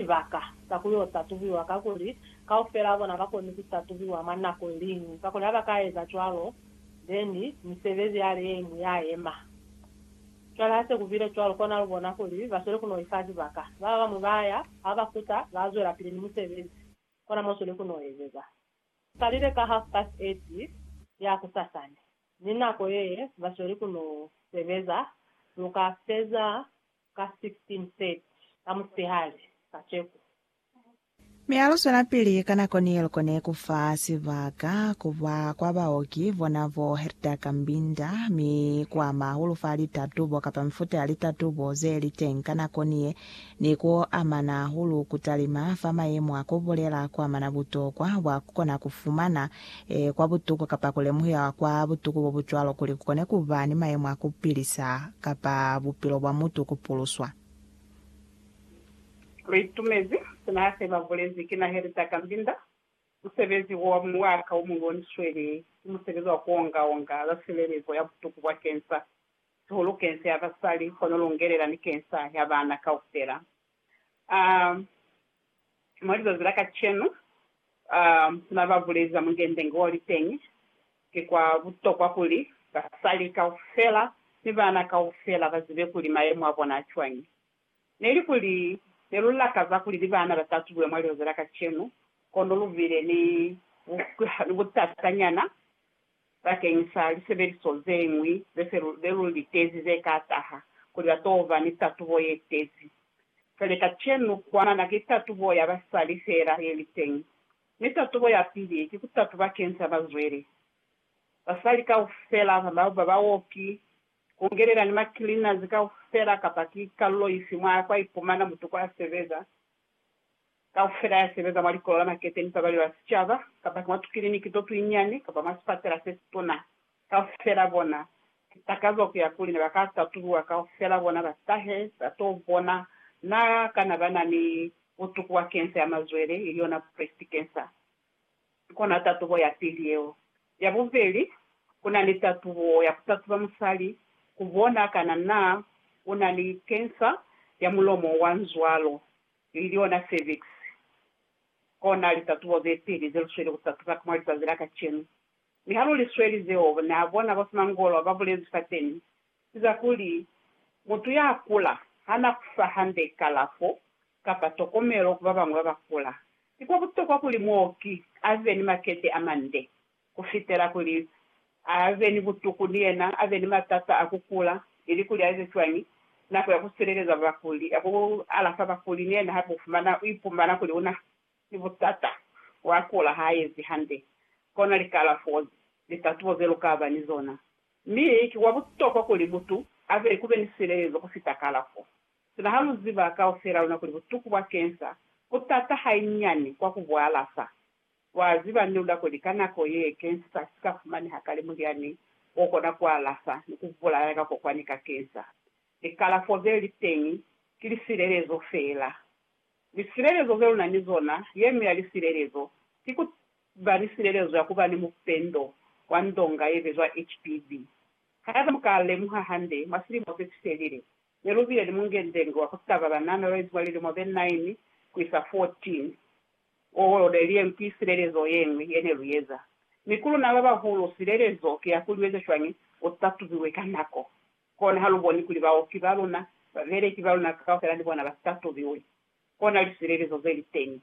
Sibaka sa ku yo tatubiwa kakuli kaufelaa bona ba koni ku tatubiwa mwa nako iliñwi, kakuli ha ba ka eza cwalo, then misebezi ya le ye iñwi ya yema. Cwale ha se ku bile cwalo, kona lu bona kuli ba sweli ku no ifa sibaka. Ba babañwi ba ya, ha ba kuta, ba zwelapili ni musebezi. Kona mo sweli ku no ezeza. Ku kalile ka half past eight ya kusasani, ni nako ye ba sweli ku no sebeza, lu ka feza ka 16:30 ka musipehali kaceko. Mi a luzwelapili ka nako ni loko ne ku fa sibaka ku ba kwa baoki bona bo Herta Kambinda mi ku ama hahulu fa litatubo kapa mifuta ya litatubo ze li teñi ka nako ni ye ni ku amana hahulu ku talima fa mayemo a ku bulela kwa mana butokwa bwa ku kona ku fumana Ee, kwa butuku, kapa ku lemuhiwa kwa butuku bo bu cwalo kuli ku kone ku ba ni mayemo a ku pilisa, kapa bupilo bwa mutu ku puluswa. Re itumezi sina hase ba bulezi, Ki naheli za ka mbinda. Musebezi wo wa mwaka o mulu o ni sweli, ki musebezi wa ku onga-onga za silelezo ya butuku bwa kensa, sihulu kensa ya basali, kono lungelela ni kensa ya bana kaufela. a mwa lizazi la kacenu a na ba bulezi ba mungendenge wa liteñi, ki kwa butokwa kuli basali kaufela ni baana kaufela ba zibe kuli mayemo a bona a cwañi. Ne li kuli ne lu lakaza kuli ni baana ba tatubule mwa lizazi la kacenu, kono lu bile ni butatanyana Bakeng sa lisebeliso ze ñwi ze se lu be lu litezi ze ka taha, kuli ba t'o ba ni tatubo ye tezi. Fele kacenu, kwamana ki tatubo ya basali fela ye li teñi. Mi tatubo ya pili ki ku tatuba keng sa bazweli. Basali kaufela, ba baoki, ku ngelela ni ma cleaners kaufela kapa ki kalulo ifi mwa kwa ipumana mutu kwa sebeza, kaufela ya sebeza mwa likolo la makete ni pabalelo ya sicaba, kapa ki mwa tukiliniki to tuinyiani, kapa mwa sipatela se situna, kaufela bona, ki takazo ku ya kuli ne ba ka tatuluwa kaufela bona ba tahe ba to bona na kana ba na ni butuku bwa kensa ya mazwele, ili yona breast cancer. Ki kona tatubo ya pili yeo. Ya bubeli, ku na ni tatubo ya ku tatuba musali ku bona kana na u na ni kensa ya mulomo wa nzwalo, ili yona cervix. Kona litatubo ze peli ze lu sweli ku tatuba ka mwa lizazi la kacenu. Mi ha lu li sweli zeo, na bona bo simangolo ba bulezi fateni ki za kuli, Mutu ya kula ha na ku fa hande kalafo kapa tokomelo ku babañwi babakula, ki kwa butokwa kuli muoki abe ni makete amande kufitela kuli abe ni butuku ni yena abe ni matata a kukula, ili kuli aeze cwañi nako ya kusileleza bakuli, ya ku alafa bakuli ni yena hape ufumana uipumana kuli una ni butata wa kula haaezi hande. Kona likalafo ze litatubo ze lukaba ni zona. Mi ki kwa butokwa kuli mutu abe kube ni silelezo kufita kalafo. Sina ha lu ziba kaufela luna kuli butuku bwa kensa bu t'ata hanyinyani kwa ku bu alafa. Lwa ziba ni luna kuli ka nako ye kensa si ka fumaneha kale mulyani o kona ku alafa ni ku bulaya kakokwani ka kensa. Likalafo ze li teñi ki lisilelezo feela. Lisilelezo ze lu na ni zona, ye ñwi ya lisilelezo ki ku ba ni silelezo ya ku ba ni mupendo wa ndonga ye bizwa HPV. Haiba mu ka lemuha hande, mwa silimo se si felile, Ne lu bile ni mungendengi wa ku taba banana yo izuba lilimo ze 9 ku isa 14. Wo lo leliyeng ki silelezo ye ñwi ye ne lu eza. Mi ku luna ba bahulu, silelezo ki ya kuli u eze cwañi u tatubiwe ka nako. Kona ha lu boni kuli baoki ba luna, babeleki ba luna kaufela ni bona ba si tatubiwe, kona lisilelezo ze li teñi.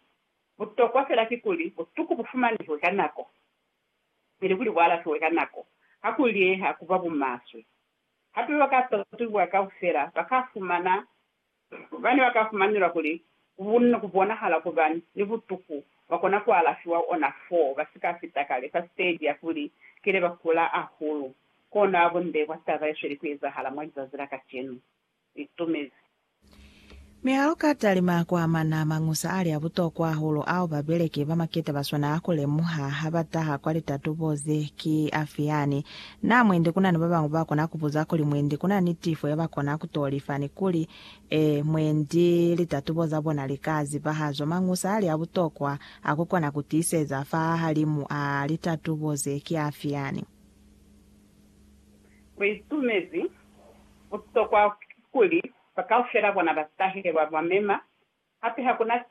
Butokwa fela ki kuli butuku bu fumanehwe ka nako, ili kuli bu alafiwe ka nako. Ha ku liyeha ku ba bumaswe. Hape bakatatubuha kaufela bakafumana bane bakafumanelwa kuli bunna kubonahala kuba ni butuku bakona kualafiwa ona fo basika fita kale fa siteji ya kuli kile bakula ahulu. Kono abunde kwa taba yesweli kuezahala mwa lizazi la kacenu. li tumezi. Mi ha lu ka talima ku amana mañusa a li a butokwa hahulu ao babeleki ba maketa ba swanaa ku lemuha ha ba taha kwa litatubo ze, ki afi yani? Na mwendi ku na ni ba bañwi ba kona ku buza kuli, Mwendi ku na ni tifo ya ba kona ku to lifa? Ni kuli, Ee, mwendi litatubo za bona li ka zibahazo. Mañusa a li a butokwa a ku kona ku tiiseza fahahalimu a litatubo ze, ki afi yani? Mu itumezi butokwa kuli bakaufela bona batahile, ba ba mema, hape hakuna